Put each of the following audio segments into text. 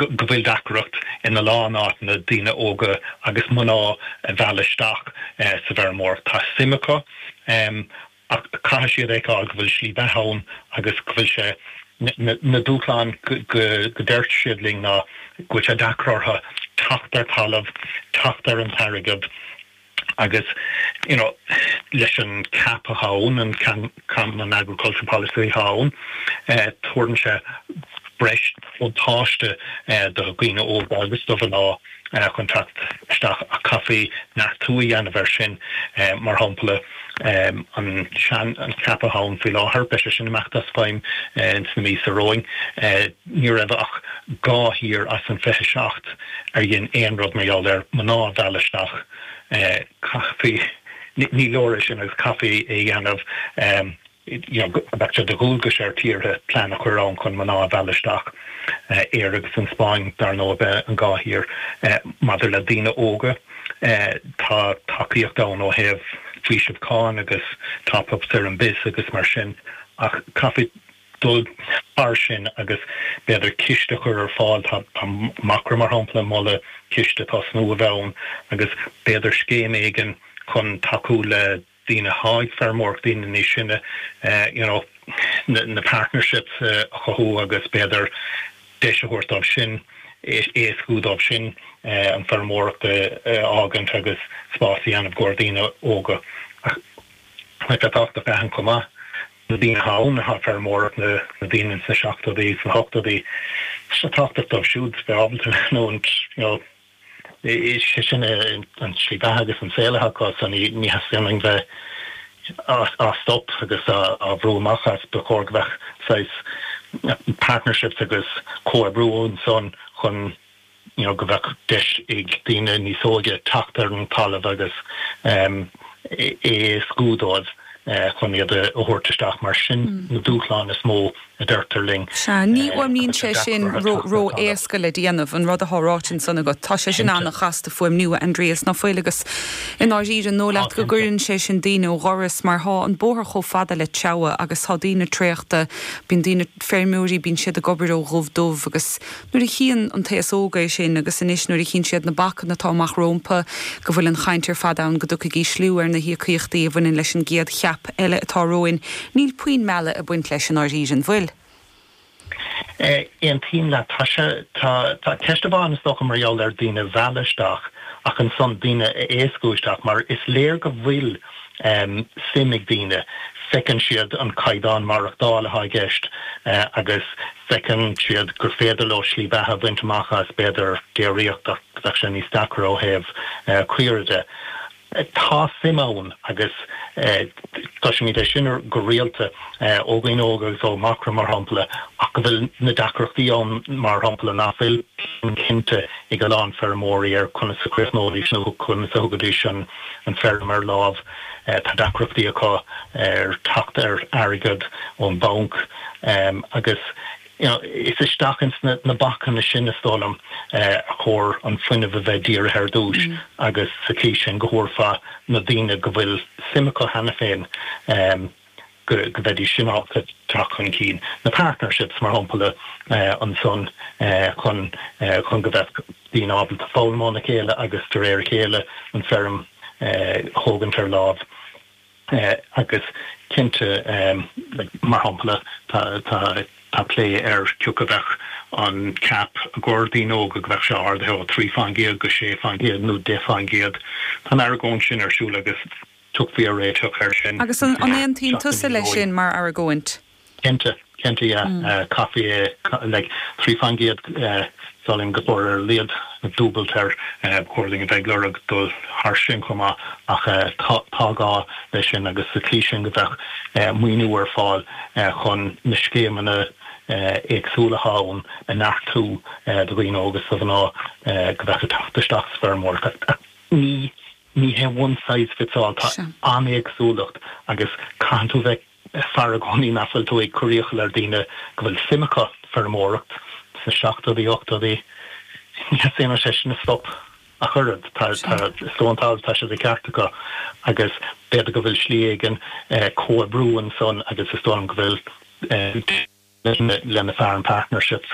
go bhfuil deacracht ina lán áiteanna daoine óga agus mná a mhealladh isteach sa bhfeirmeoireacht. Tá suim acu ach caithfidh siad a fheiceáil go bhfuil slí bheatha ann agus go bhfuil sé. Na dúshláin go ndeir siad linn ná go bhfuil sé deacair orthu teacht ar thalamh, teacht ar an t-airgead, Agus, you know, leis an CAP atá ann, an Common Agricultural Policy atá ann, tabhaireann sé breis buntáiste do dhaoine óga agus do mhná chun teacht isteach ach chaithfí neartú a dhéanamh air sin. Mar shampla, an sean-CAP atá ann faoi láthair, beidh sé sin ag imeacht as feidhm ins na míosa romhainn. Ní raibh ach dhá thír as an 27 ar dhein aon rud mar gheall ar mná a mhealladh isteach. Chaithfí, ní leor é sin agus chaithfí é a dhéanamh, you know, go mbeadh sé de dhualgas ar thíortha plean a chur ann chun mná a mhealladh isteach. Éire agus an Spáinn, dar ndóigh, ab iad an dhá thír. Maidir le daoine óga, tá tacaíocht ann ó thaobh faoiseamh cáin agus top-ups ar an BISS agus mar sin ach chaithfí, dul thar sin agus b'fhéidir ciste a chur ar fáil. Tá Macra, mar shampla, ag moladh ciste tosnú a bheith ann agus b'fhéidir scéim éigin chun tacú le daoine atá ag feirmeoireacht, daoine níos sine, you know, na partnerships a chothú agus b'fhéidir deis a thabhairt dóibh sin, éascú dóibh sin an feirmeoireacht a fhágaint agus spás a dhéanamh do daoine óga. Ach, like, tábhachtach a aithint chomh maith. na daoine atá ag feirmeoireacht, na daoine ins na seachtóidí, sna hochtóidí, tá sé tábhachtach dóibh siúd bheith ábalta leanúint, sé sin é an slí bheatha agus an saol atá acu so ní theastaíonn uainn bheith á stop agus á bhrú amach as, ba chóir go mbeadh saghas partnerships agus comhoibriú ansan chun. go mbeadh deis ag daoine níos óige teacht ar an talamh agus é a éascú dóibh chun iad a thabhairt isteach. Mar sin na dúshláin is mó, a deirtear linn. Sea, ní fhuaimníonn sé sin ró-éasca le déanamh, an rud atá ráite ansan agat. Tá sé sin an-chasta fuaimniú, a Aindrias, ná fuil? Agus i ndáiríre, an dóigh leat go gcuireann sé sin daoine ó dhoras, mar tá an bóthar chomh fada le Teamhair, agus tá daoine traochta, bíonn daoine, feirmeoirí, bíonn siad ag obair ó dhubh dubh, agus. Nuair a chíonn an t-aos óg é sin, agus anois nuair a chíonn siad na bacanna atá amach rómpa, go bhfuil an chaint ar fad ann go dtiocfaidh ísliú ar na híocaíochtaí a bhaineann leis an gcéad CAP eile atá romhainn, níl puinn mealladh ag baint leis i ndáiríre, an bhfuil. Aontaím leat. Tá sé, tá, tá ceist amháin, is dócha, mar gheall ar daoine a mhealladh isteach, ach ansan daoine a éascú isteach, mar is léir go bhfuil, suim ag daoine, feiceann siad an caighdeán maireachtáil atá i gceist agus feiceann siad gur féidir leo slí beatha a bhaint amach as, b'fhéidir, déiríocht ach go bhfuil sé níos deacra ó thaobh caoire de. Tá suim ann agus cloisimid é sin go rialta ó dhaoine óga agus ó Mhacra, mar shampla, ach go bhfuil na deacrachtaí ann, mar shampla, nach bhfuil plean cinnte ag a lán feirmeoirí ar conas a chríochnóidís nó conas a thugaidís an an feirm ar láimh. Tá deacrachtaí acu ar theacht ar airgead ón banc agus is isteach ins na bacanna sin, is dóigh liom, ba chóir an fuinneamh a bheith dírithe ar dtúis agus sa chaoi sin go dtabharfadh na daoine go bhfuil suim acu cheana féin, go mbeidís in ann teacht chun cinn, na partnerships, mar shampla, ansan chun go mbeadh daoine ábalta foghlaim óna chéile agus de réir a chéile an feirm a thógaint ar láimh. Agus cinnte, mar shampla, tá plé ar cioca bheadh an CAP i gcomhair daoine óga, go mbeadh sé ardaithe ó trí faoin gcéad go sé faoin gcéad nó deich faoin gcéad. Tá an argóint sin ar siúl agus. Tiocfaí ar réiteach air sin. Agus an aontaíonn tusa leis sin mar argóint? Cinnte, cinnte yeah. Chaithfí é like trí faoin gcéad salainn go leor ar laghad dúbailt air, ba chóir dúinn a bheith ag lorg dul thar sin chomh maith ach tá gá leis sin agus sa tslí sin go mbeadh maoiniú ar fáil chun na scéimeanna éagsúla atá ann a neartú do dhaoine óga is do mhná go mbeadh ag teacht isteach sa bhfeirmeoireacht. Ní. Ní hé one size fits all, tá an-éagsúlacht agus caitheann tú bheith ag faire i gcónaí nach bhfuil tú ag cur iachall ar daoine go bhfuil suim acu i bhfeirmeoireacht sna seachtóidí, ochtóidí. Ní dhéanfaidh sé sin stop ach oiread. Tá, tá, is do an t-alt, tá sé de cheart acu agus b'fhéidir go bhfuil slí éigin comhoibriú ansan agus is dóigh liom go bhfuil. lena fearainn partnerships.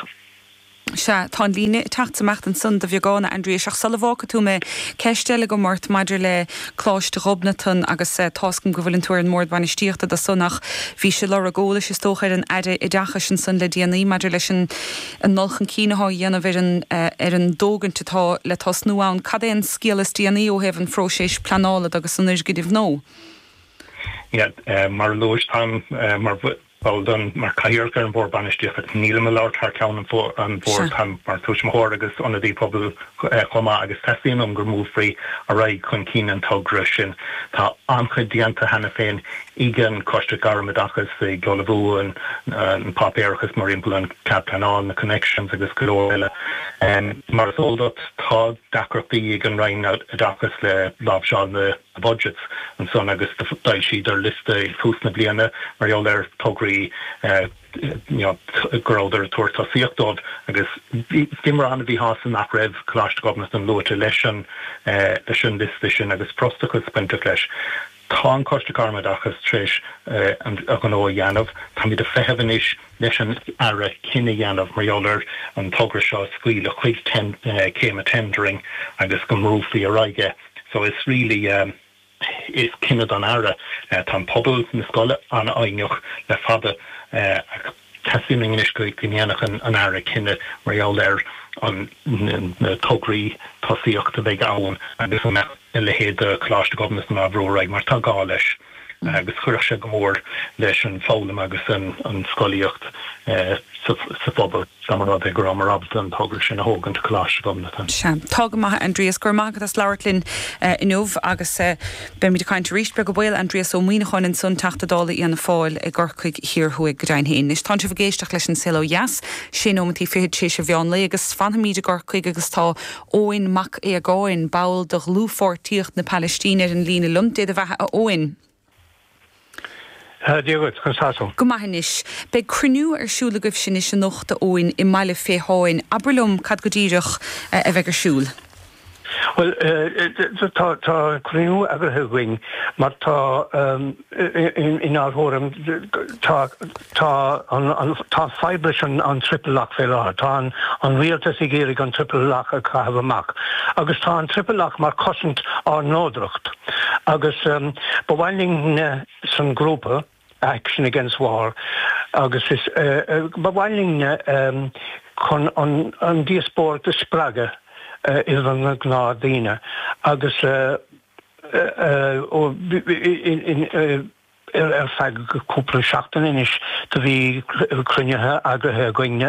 Sea, tá an líne ag teacht 's amach ansan de bheagán, a Aindriais, ach sula bhfágfaidh tú mé, ceist eile agam ort maidir le Coláiste Ghobnatan agus tá 's agam go bhfuileann tú ar an mBord Bainistíochta de san ach bhís ag lorg eolais is dócha ar an Aire Oideachais ansan le déanaí maidir leis an an dul chun cinn athá á dhéanamh ar an ar an dtógaint atá le tosnú ann. Cad é an scéal is déanaí ó thaobh an phróiséis pleanála de agus an fhoirgnimh nua? Mar a luais, táim mar. Ball den, mar Cathaoirleach ar an Bhord Bainistíochta. Nílim ag labhairt thar ceann an Bhoird, táim mar Tuismitheoir agus Ionadaí Pobail chomh maith agus teastaíonn uaim go mbrúfaí ar aghaidh chun cinn an togra sin. Tá an-chuid déanta cheana féin ag an Choiste Gairm Oideachais, ag ullmhú an páipéarachas mar shampla an Cead Pleanála, na Connections agus go leor eile. Mar is eol duit, tá deacrachtaí ag an Roinn Oideachais le láimhseáil na. budgets. Ansan agus d'fhoilsíodar liosta ag tús na bliana mar gheall ar tograí go rabhadar ag tabhairt tosaíocht dóibh agus bhíomar an-mhíshásta nach raibh Coláiste Ghobnatan luaite leis an, leis an liosta sin agus frustrachas bainteach leis. Tá an Coiste Gairmoideachas tar éis a ghnó a dhéanamh. Táimid ag feitheamh anois leis an Aire cinneadh a dhéanamh mar gheall ar an togra seo a scaoileadh chuig céim an tendering agus go mbrúfaí ar aghaidh é. So it's really yeah is cinneadh don Aire. Tá an pobal na scoile an-fhoighneach le fada ach tá sé in am anois go ndéanfadh an Aire cinneadh mar gheall ar an na tograí tosaíochta a bheidh ann agus an mbeadh a leithéid de Coláiste Ghobnatan á bhrú ar aghaidh mar tá gá leis. agus chuirfeadh sé go mór leis an bhfoghlaim agus an scolaíocht sa phobal, dá mba rud é go rabhamar ábalta an togra sin a thógaint go Coláiste Ghobnatan. Sea. Tá go maith, a Aindrias. Go raibh maith agat as labhairt linn inniu, agus beimid ag caint arís, beag baol. Aindrias Ó Muíneacháin ansan, Teachta Dála Fhianna Fáil i gCorcaigh Thiar Thuaidh. Go deimhin fhéin. Anois, tánn sibh ag éisteacht leis An Saol Ó Dheas, sé nóimeantaí fichead tar éis an mheán lae, agus fanfaimíd i gCorcaigh, agus tá Eoin Mac Aodhagáin, ball de Dhlúthpháirtíocht na Palaistíne ar an líne liom. Dé do bheatha, a Eoin. Dia dhuit, conas tá tú? Go maith anois. Beidh cruinniú ar siúl agaibhse anois anocht, a Eoin, i mBaile Féitheáin. Abair liom cad go díreach a bheidh ar siúl. Bhuel, tá cruinniú eagraithe againn mar tá. Inár thuairim, tá fadhb leis an triple lock fé láthair. Tá an rialtas ag iarraidh an triple lock a chaitheamh amach, agus tá an triple lock mar chosaint ár neodracht. Agus ba mhaith linn san grúpa Action Against War, agus is ba mhaith linn chun an díospóireacht a spreagadh idir na gnáth daoine, agus. Ar feadh cúpla seachtain anois do bhí cruinnithe eagraithe againn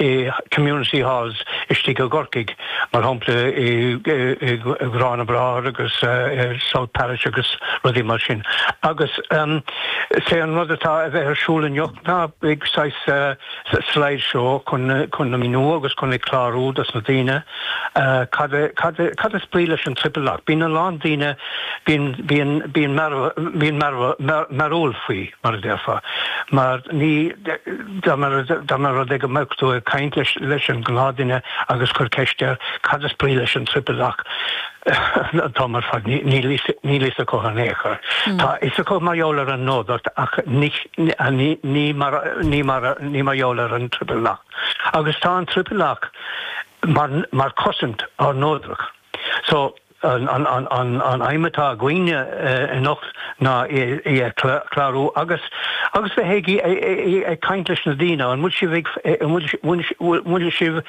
i community halls istigh i gCorcaigh, mar shampla i Garrán na mBráthar agus South Parish agus rudaí mar sin. Agus sé an rud atá a bheith ar siúl anocht ná saghas slide show chun a mhíniú agus chun ag clárú dos na daoine, Cad, cad, cad is brí leis an triple lock? Bíonn a lán daoine, bíonn, bíonn mearbhall faoi, mar a déarfá, mar dá mba rud é go mbeadh tú ag caint leis an ngnáthdhuine agus cur ceist air, cad is brí leis an triple lock? Tá, ar fad, níl fhios acu in aon chor. Tá fhios acu mar gheall ar an neodracht ach ní mar gheall ar an triple lock. Agus tá an Triple Lock mar chosaint ár neodracht. So, an aidhm atá againn anocht ná í a chlárú agus agus bheith ag caint leis na daoine, an bhfuil sibh, bhfuil sibh,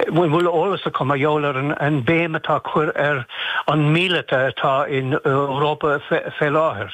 an bhfuil eolas acu mar gheall ar an béim atá cur ar an míleata atá in Europa fé láthair.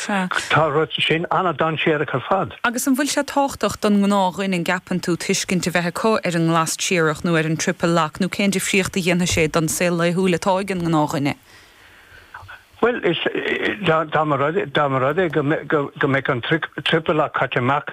Sea. Tá an rud sin an-dainséarach ar fad. Agus an bhfuil sé tábhachtach don ngnáthdhuine, an gceapann tú, tuiscint a bheith acu ar an nGlas Triarach nó ar an Triple Lock, nó cén difríocht a dhéanfaidh sé don saol laethúil atá ag an ngnáthdhuine? Bhuel, dá mba rud é go mbeadh an Triple Lock caite amach,